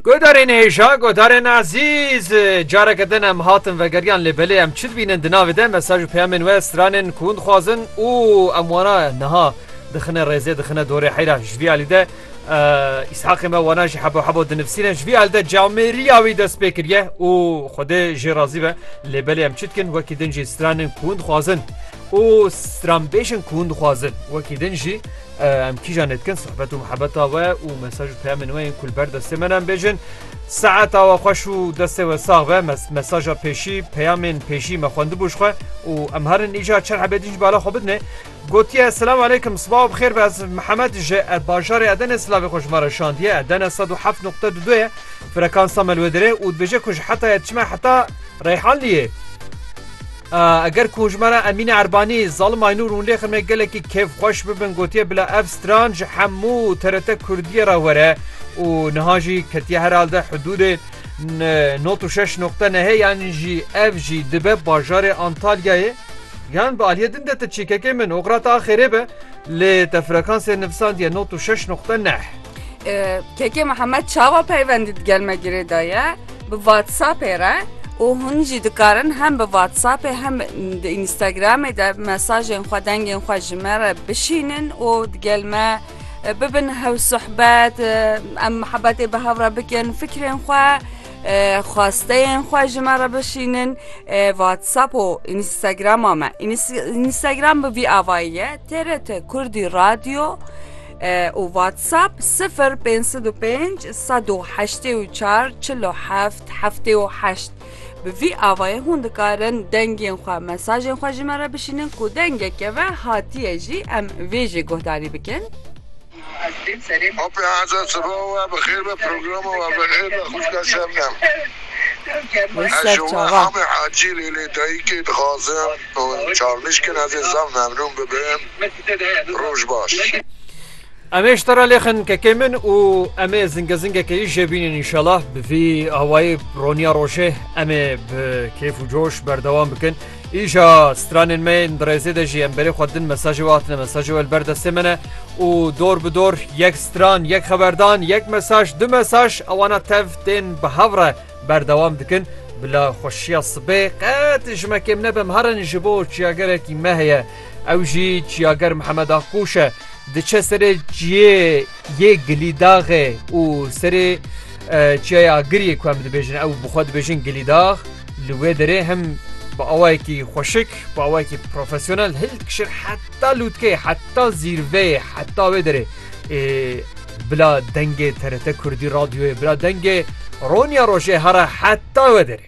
Guhdarên hêja, guhdarên ezîz, careke din em hatin vegeriyan lê belê em çi dibînin di navê de mesaj û peyamên we stranên ku hûn dixwazin û em wana niha dixine rêzê dixine dorê heyra ji vî alî de îshaqê me wana jî hebo hebo dinivîsîne ji vî alî de camêriya wî dest pê kiriye û xwedê jê razî be lê belê em çi dikin wekî din jî stranên ku hûn dixwazin û stranbêjin ku hûn dixwazin wekî din jî Em kîjan lê dikin sohbet û mihebeta we û mesaj û peyamên we yên ku li ber destê me ne bêjin. Saeta we xweş û destê we sax be mesaja pêşî peyamên pêşî me xwendibû ji xwe û em herin îca çar hebedîn ji bala xwe bidinê. Gotiye Selam aleykum sibaw bixêr be ez Mihemed ji bajarê Edenê silavê xwe ji me re şandiye Edene 107.2 ye frekansa me li wê dirê û dibêje ku ji hetayê diçime heta Reyhanliyê. Eger ku hûşmena Emîne Erbanî, Zalim Aynûr û Lêxim ê gelekî kêfxweş bibin gotiye bila ev stran ji hemû TRT Kurdiyê re were û niha jî ketiye herhalde hidûdê not û şeş noqte nehê yan jî ev jî dibe bajarê Antalyayê yan bi aliyê din de ti çîkekê min oxira te a xêrê be lê te frekansê nivisandiye not û şeş noqte neh. Kekê Mihemed çawa peywendî di gel me girê de ye bi WhatsAppê re û hûn jî dikarin hem bi WhatsAppê hem di Instagramê de mesajên xwe dengên xwe ji me re bişînin û di gel me bibin hew sohbet em mihebetê bi hev re bikin fikrên xwe xwasteyên xwe ji me re bişînin WhatsApp û Instagrama me Instagram bi vî avayî ye TRT Kurdî Radyo û WhatsApp sifir pênc sed û pênc sed û heştê û çar çil û heft heftê û heşt. Bi vî avayê hûn dikarin dengên xwe, mesajên xwe ji me re bişînin ku dengek keve hatiye jî em vê jê guhdarî bikin. Opya Hazar Sibawa we bi xêr be programa we bi xêr be xwîşka Şebnem. Wê Ez ji serçava. Wehamê Hacî Lêlê Dayikê dixwazim. Hûn çavnîş kin ez ê zaf memnûn bibim. Roj baş. Em ê ji te re lêxin kekê min û em ê zinge zingekê yî jê bînin înşela bi vî awayî roniya rojê em ê bi kêf û coş berdewam bikin. Îja stranên me yên dirêzê de jî em berê xwe din mesajê we hatine mesajê we li ber destê me ne û dor bi dor yek stran yek xeberdan yek mesaj du mesaj ewana tev tên bi hev re Berdewam dikin, Bila xweşiya sibê qet ji me kêm nebe, em herin ji bo çiyagerekî me heye. Ew jî çiyager Mihemed Aqûş e. Diçe serê çiyê yê Gilîdaxê û serê Çiyaya Agiriyê ku em dibêjin ew bi xwe dibêjin Gilîdax li wê derê hem bi awayekî xweşik, bi awayekî profesyonel hil dikişin heta lûtkeyê, heta zîrveyê, heta wê derê. Bila dengê TRT Kurdî Radyoyê bila dengê Ronya Rojê here heta we derê.